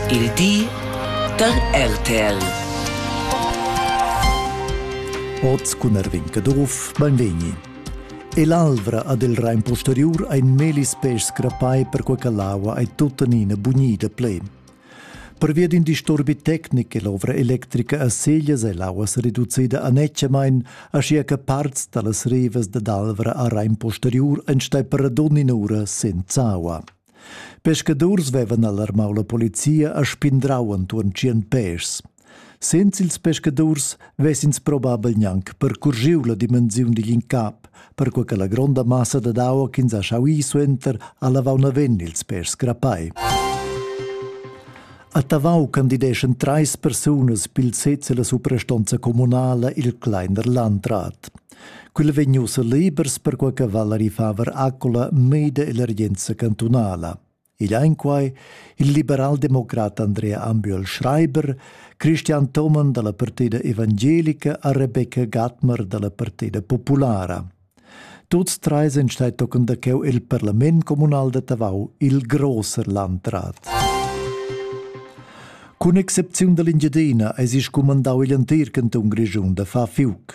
Il di da RTL. Oz cun Erwin Caduff, benvegni. E l'alvra ad il Rain posteriur ein melis pes crapai per quei che l'aua ei tuttenina bunida ple. Pervia d'in disturbi tecnic è l'ovra electrica a Seglias e l'aua se reducida a necemain, aschia che parts dallas rivas dad Alvra a Rain posteriur ein stai per ad ogni ura senza aua. Pescadurs vevan alarmau la polizia e spindrau entuorn tschien pèschs. Senza ils pescadurs vessins probabel gnanc percurgiu la dimensiun digl incap, perquei che la gronda massa dad aua ch'ins ha schau ir suenter ha lavau naven ils pèschs grapai. A Tavau candideschan treis persunas pil sez ella suprastonza communala il Kleiner Landrat. Quella vegn ussa libers perquai che Valerie Faber accola mida l'emergenza cantunala. Igl ein quai il liberaldemocrat Andrea Ambiol Schreiber, Christian Thomann dalla Partida Evangelica a Rebecca Gatmer dalla Partida Populara. Tuts tre sind stai tochen da cheu il parlament communal da Tavau, il grosser landrat. Cun excepziun dall'Engiadina eis il scumandau igl entir cantun Grischun da far fiuc.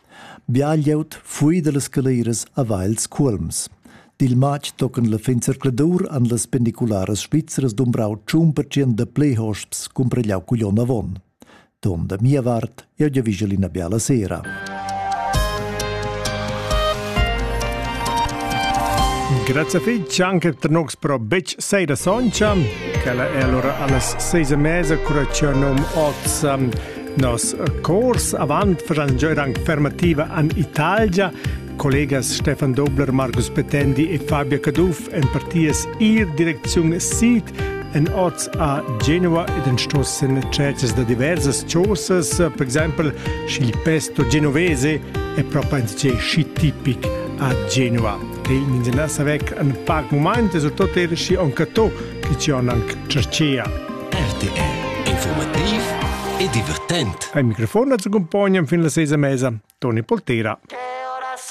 Bia glieud fui dallas scaleras haveva ils cuolms. Dil matg tocan la fin zercladur han las pendicularas svizzeras dumbrau tschun pertschient da pli hosps cumparegliau cugl onn avon. Ton da mia vart, jeu giavischel ina biala sera. Grazie fitg anche per noi pro bec seira soncha, che è allora alles seis mese cura che num oz Nos cors avant faschan jeu anc fermativa an Italgia. Collegas Stefan Dobler, Markus Petendi e Fabia Caduff en partias ir direcziun sid en oz a Genova ed en stos en cercas da diversas chosas, per exempel sch'il pesto genovese è proprio in schi tipic a Genova. E ins è nassa vec an pac moment e soprattutto er schi anche to che ci han anche cercea. RTR informativ e divertent. Ein microfon accompognan fin la sesa mesa. Toni Poltera.